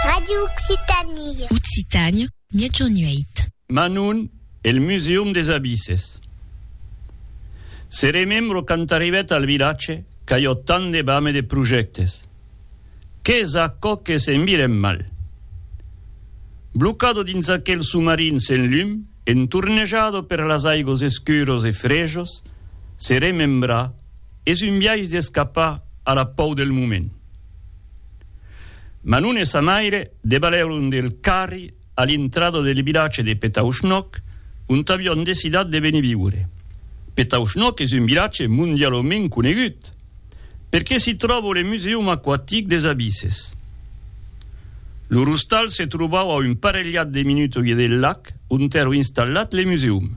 Radio Occitanie. Occitània, miègjorn 8. Manon e el Museum des Abisses. Se remembro quand arribèt al vilatge qu'aiò tant de bam e de projèctes. Qu'es aquò que se'n virem mal? Blocado dins aquel somarin sen lum, entornejado per las aigos escuros e frejos, se remembra, es un biais d'escapar a la pòur del moment. Ma non e sa maire debalèron del carri a l'intrada del vilatge de Petauschnock, ont avián decidat de venir viure. Petauschnock es un vilatge mondialament conegut, perque s'i tròba le Museum Aquatic des Abisses. Lor ostal se trobava a un parelhat de minutòie del lac ont èra installat le museum.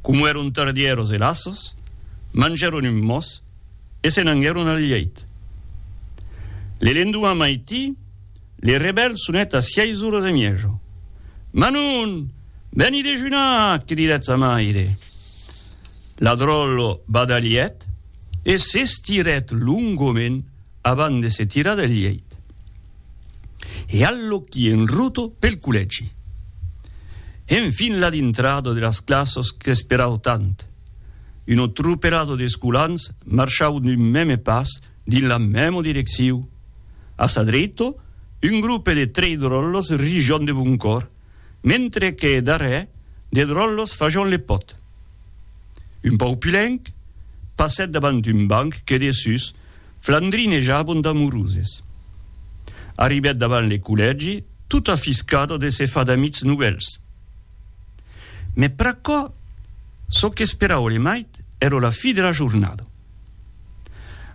Como èron tardieros e laços, mangèron un mos e se n'anguèron al lheit. Le lendoman maití, le rebèl sonèt a sièis oras e miejo. Manon! Veni dejunar! que didèt sa maire. La dròlla badalhèt e s'estirèt longament abans de se tirar del lheit. e allòqui en ruto pel collègi. Enfin la dintrada de las classas qu'esperau tant. Un otruperado d'escolans marchau d'un mème pas dins la mèma direcciu. A sa dreita, un grupe de trei dròllas rijan de bon còr. mentre que darrèr de dròllos fajon le pòt. Un pauc pulenc passèt davant un banc que dessús flandrinejabon d'amoroses. Arribèt davant le collègi tot afiscado de se far d'amics novèls. Mès pr'aquò, çò qu'esperau le mait èra la fi de la jornada.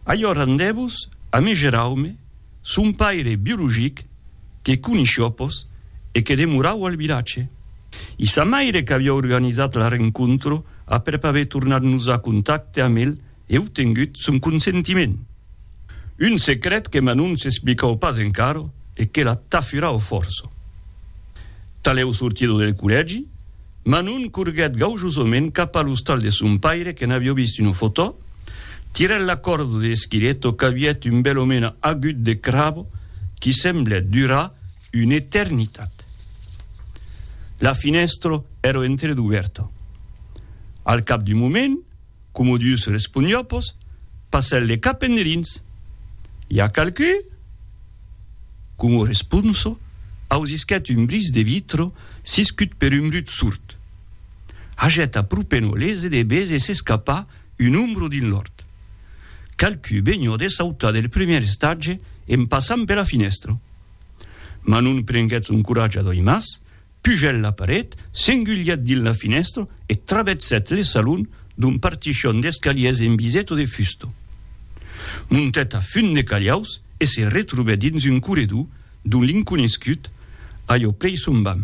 Allors andèvos a me geraume Son paire biologic, que coneishó pos e que demorau al vilatge. I sa maire qu'avió organizat la rencontra aprèp aver tornat nosar contacte amb el e obtengut son consentiment. Un secret que Manon s'explicau pas encara e que la tafurau fòrça. Talèu sortida del collègi, Manon corguèt gaujosament cap a l'ostal de son paire que n'avió vist una fotò, tirèt la còrda de Schiretto qu'a vièt un bèl omena agut de cravo qui semblèt durar una eternitat. La finèstra èra entreduvèrta. Al cap d'un moment, Comodius responiopos, passèl le cap enderins. I a qualqui? Como responso, ausisquèt un bris de vitro siscut per un brut surt. Hagèt apropeno les edebes e s'escapà un ombro dins l'òrt. Qualqui benhò de sautar del primièr estatge en passant pera finèstra. Ma non prenguèt son coratge a doi mas, Pugèt la paret, s'engulhèt dins la finèstra e travèrsèt le salon d'un partichon d'escaliers en biseto de fusta. Montèt a fund de calhaus e se retrobèt dins un corredor d'on l'inconescut ajò prei son bam.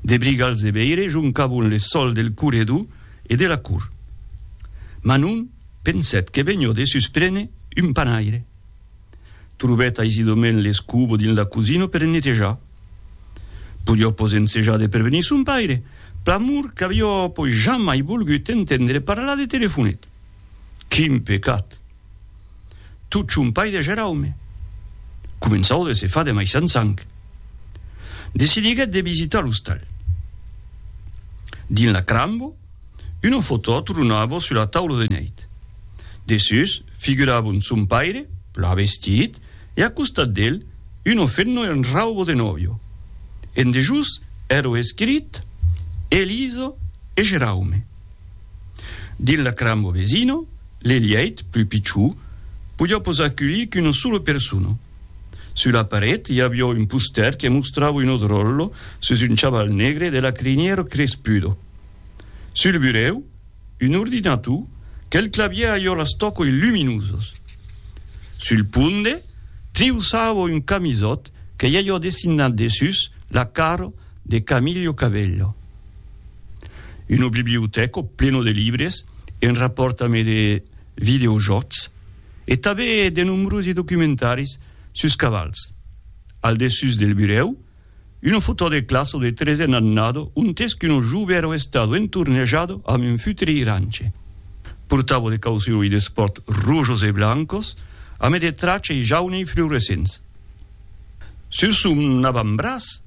De brigals de veire joncavon le sòl del corredor e de la cort. Manon pensèt que venhó de susprene un panaire. Trobèt aisidament l'escubo dins la cosina per ennetejar. Podió pos ensejar de prevenir son paire, pr'amor qu'avió pos jamai volgut entendre parlar de telefonet. Quin pecat! Tot son paire Geraume començaut de se far de maissant sang. Decidiguèt de visitar l'ostal. Dins la crambo, Una fotò tronava sus la taula de nèit. Dessús figuravon son paire, plan vestit, e a costat d'el, una femna en rauba de nòvio. En dejós èra escrit Elisa e Geraume. Dins la cramba vesina, l'elièit, plus pichó, podiá pas aculhir qu'una sola persona. Sus la paret i aviá un postèr que mostrava una dròlla sus un chaval negre de la crinièra crespuda. Sul burèu, un ordinator que'l clavièr a iòlas tòcoi luminosas. Sul ponde, triusava un camisòt que i a iò dessinat dessús la cara de Camillo Cabello. Una bibliotèca plena de libres en rapòrt amé de videojòcs e tabé de nombrosi documentaris sus cavals. Al dessús del burèu, Una foto de classa o de tresen annada ontes qu'un jove èra estado entornejado amb un futre iranche. Portava de caucion e d'espòrt rojos e blancos, amé de tracha e jaune e fluorescents. Sur son avantbraç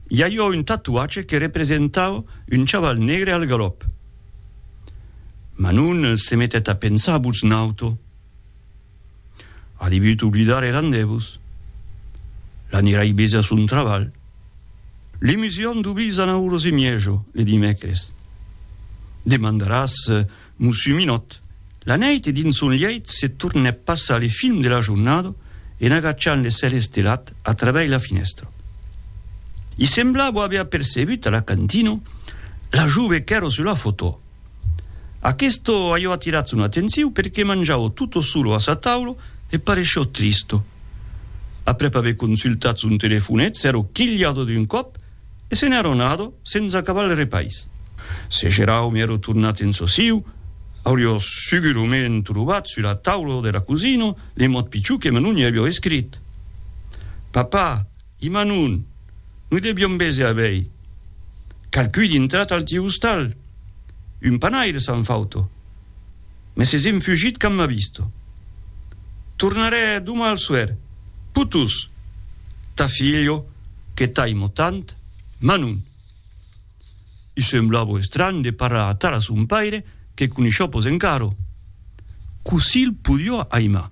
i aviá un tatuatge que representava un chaval negre al galòp. Manon se metèt a pensar a votz nauta. A debut oblidar er andevos. L'anirai bèse a son trabalh. L'emusion d'oblir Zanau Rosemiejo le dimècres. Demandaràs Mussu Minòt. La nèit dins son lièit se tornèp passar le film de la jornada en agachant le cèl estelat a traveis la finèstra. I semblabo aver apercebut a la cantina la jove qu'èra sus la fotò. Aquesto aiò atirat son atenciu perque manjau tutto solo a sa taula e paresciò tristo. Aprèp aver consultat son telefonet s'èro quilhado d'un còp e se n'èro anado sens acabar el repais. Se Geraume èro tornat en sosiu, auriò segurament trobat sus la taula de la cosina le mot pichon que me non i aviò escrit. Papà! I ma non, noi deviom bese a bèi. Qualqu'un intrat al tiu ostal. Un panaire s'an fauto. Me ses enfugit quand m'ha visto. Tornarè doma al soèr. Putus! Ta filho, que t'aimo tant, ma non. I semblavo estranh de parrar atara son paire que coneishò pos encaro. Cossí 'l podio aimar?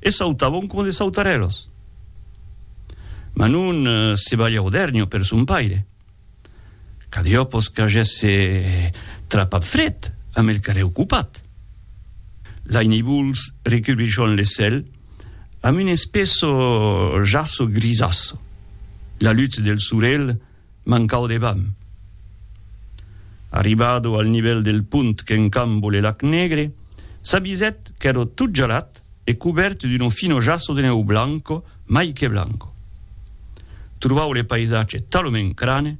e sautavon coma de sautarèlos. Ma non se balha o dèrnho per son paire. Cadiopos qu'agèsse trapat fret amb el carrèr ocupat. Lai nivols recubrichon le cèl amb un espesso jasso grisàsso. La lutz del sorelh mancau de vam. Arribado al nivèl del pont qu'encambo le lac Negre, s'avisèt qu'èro tot gelat e cubèrt d'uno fino jasso de nèu blanco mai que blanco. Trobau le païsatge talomèn crane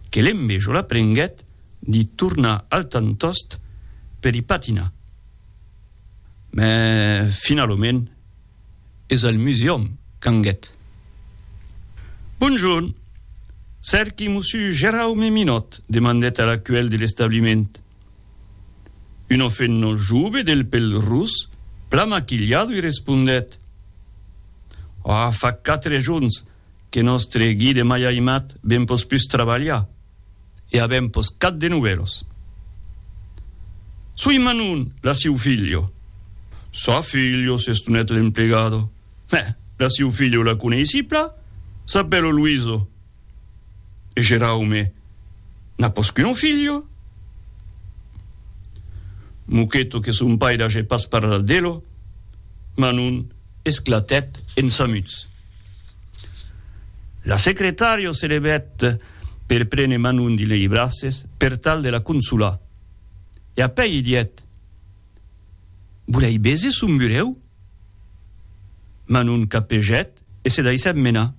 que l'envejola prenguèt d'i tornar al tantost per i patinar. Mès finalomèn es al Museum Canguet. Bonjorn! Cerqui mossu Geraume Minot, demandèt a la cuèl de l'establiment. Un ofenno jove del pel rus, plan maquilhado i respondèt, Ò, fa quatre jorns que nòstre guide mai aimat ben pos pus trabalhar e avèm pos cat de novèlos. Soi Manon, la siu filho. Sa filho, s'estonèt l'emplegado. Mès la siu filho la coneissi pla, s'apèlo Luiso. E Geraume n'a pos qu'un filho? Moqueto que son paire age pas parlat d'elo, Manon, esclatèt en samuts. La secretària se levèt per prene Manon dins lei braces per tal de la consolar, e apèi i dièt, Volèi béser son burèu? Manon capegèt e se daissèt menar.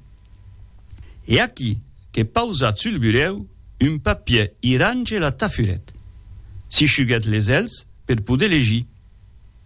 E aquí que pausat sul burèu un papier irange la tafurèt, si shuguèt les èlhs per poder legir.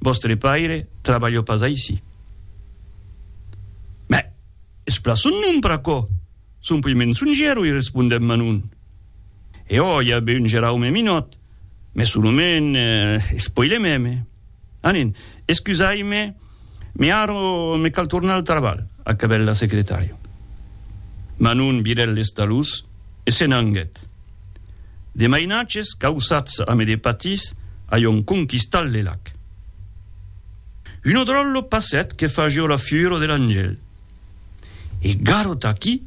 Vòstre paire trabalhò pas aicí. Mès es plan son nom per aquò, son puèi mensonger, oi, respondèt Manon. E ò, i a be un Geraume Minòt, mès son nome es puèi le mème. Anen, escusai-me, me ara me cal tornar al trabalh, acabèt la secretària. Manon virèt les talhos e se n'anguèt. De mainatges causats ame de patís aion conquistat le lac. Uno dròllo passet que fagió la fiuro de l'angèl. E garot aquí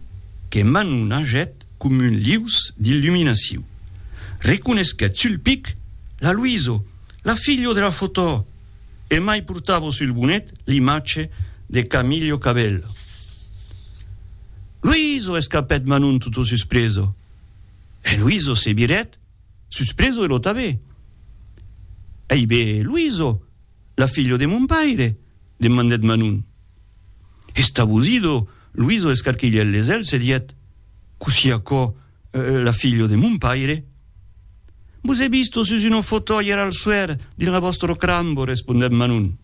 que Manu nagèt com un lius d'illuminaciu. Reconesquèt sul pic la Luiso, la filho de la fotò! E mai portavo sul bonet l'imatge de Camillo Cabello. Luiso! escapèt Manu toto suspreso. E Luiso se virèt, suspreso e lo tabè. Ei be, Luiso, la filho de mon paire? demandèt Manon. Estabosido, Luiso escarquilhèt les elhs e dièt, Cossí aquò, la filho de mon paire? Vos è visto sus una fotòia al suèr dins la vòstra crambo, respondèt Manon.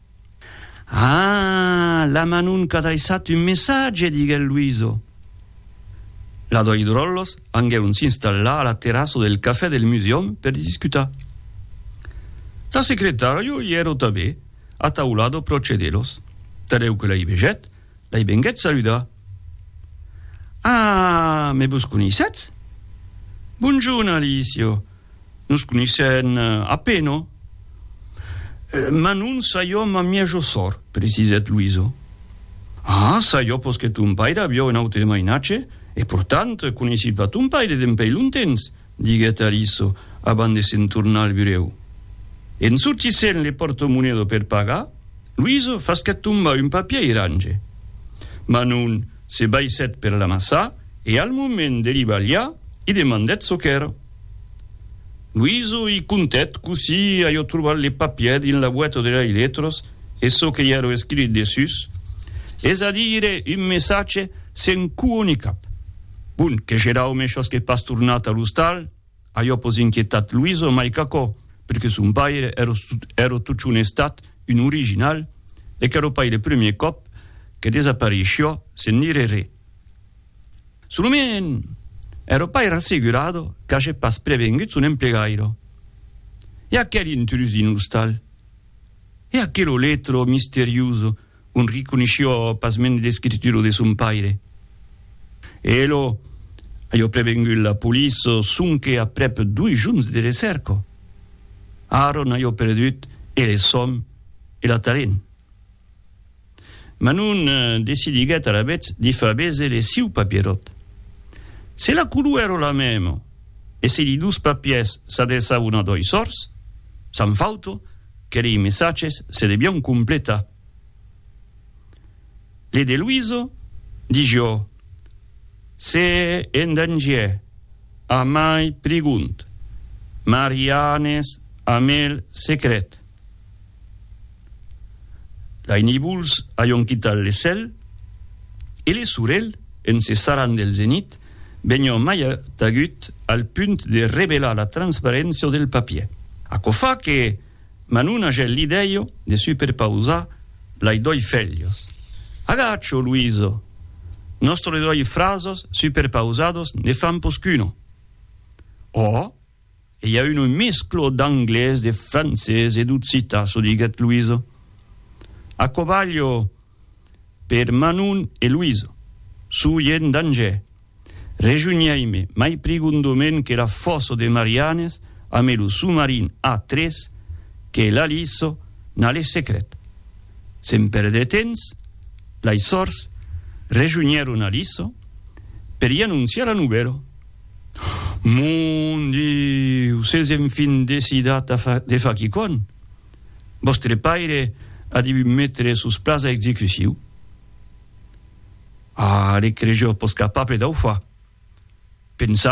Ah! la Manon qu'a daissat un messatge, diguèt Luiso. La doi dròllos anguèron s'installar a la terrassa del cafè del Museum per discutar. La secretària i èra tanben ataulada pròche d'elos. Tanlèu que la i vegèt, L'ai venguèt saludar. Ah, me vos coneissètz? Bonjorn, Alicio. Nos coneissèn a pena. Mas non saiò ma mièjo sòr, precisèt Luiso. Ah, saiò pos que ton paire aviò un aute mainatge, e portant, coneissi pas ton paire dempèi longtemps. diguèt Aliso abans de se'n tornar al burèu. En sortissent le pòrto-monedo per pagar, Luiso fasquèt tombar un papier irange. Manon se baissèt per l'amassar e al moment de li balhar, i demandèt çò qu'èra. Luiso i contèt cossí aviá trobat le papier dins la boeta de lei letras e çò que i a lo escrit dessús, es a dire un messatge sen cua ni cap. Bon, que Geraume shosque pas tornat a l'ostal, ajò pos inquietat Luiso mai qu'aquò, perque son paire èra totjorn estat un original e qu'èra pas le premier còp que desaparissiá sen dire re. Solament, èra pas era assegurada qu'age pas prevengut son emplegaire. E aquel intrús dins l'ostal? E aquelo letro misterioso on riconisció pasmens l'escritura de son paire. E elo aió prevengut la police sonque aprèp doi jorns de recèrca. Aaron aió perdut e le sòn e l'atalent. Manon decidiguèt alavetz de far béser le siu papieròt. Se la color èra la mèma e se li dos papièrs s'adreçavan a doi sòrds, s'an fauto que lei messatges se devián completar. Le de Luiso digió, Se en dangièr, amai prigont, Marianes amel secret. Lai nivols aion quitat le cèl e le sorelh, en se sarrant del zenit, vegnon mai tagut al punt de revelar la transparéncia del papier. Aquò fa que m'an una gel l'idèio de superpausar lai doi felhos. Agacho, Luiso! Nostre doi frasos superpausados ne fan pos qu'uno. Òh! E i a un mesclo d'anglés, de francés e d'occitan, çò diguèt Luiso. Aquò balho per Manon e Luiso. Suu ien dangè. Rejunhèime mai prigondament que la fòsso de Marianes ame lo soumarin A3 que l'Aliso n'a le secret. Sen perdre temps, lei sòrts rejunhèron Aliso per i anonciar la novèla. Mon Diu, s'es enfin decidat a far de far quicònh! Vòstre paire a devut metre sos plans a execuciu. A, le crejors pos capable dau far. Pensai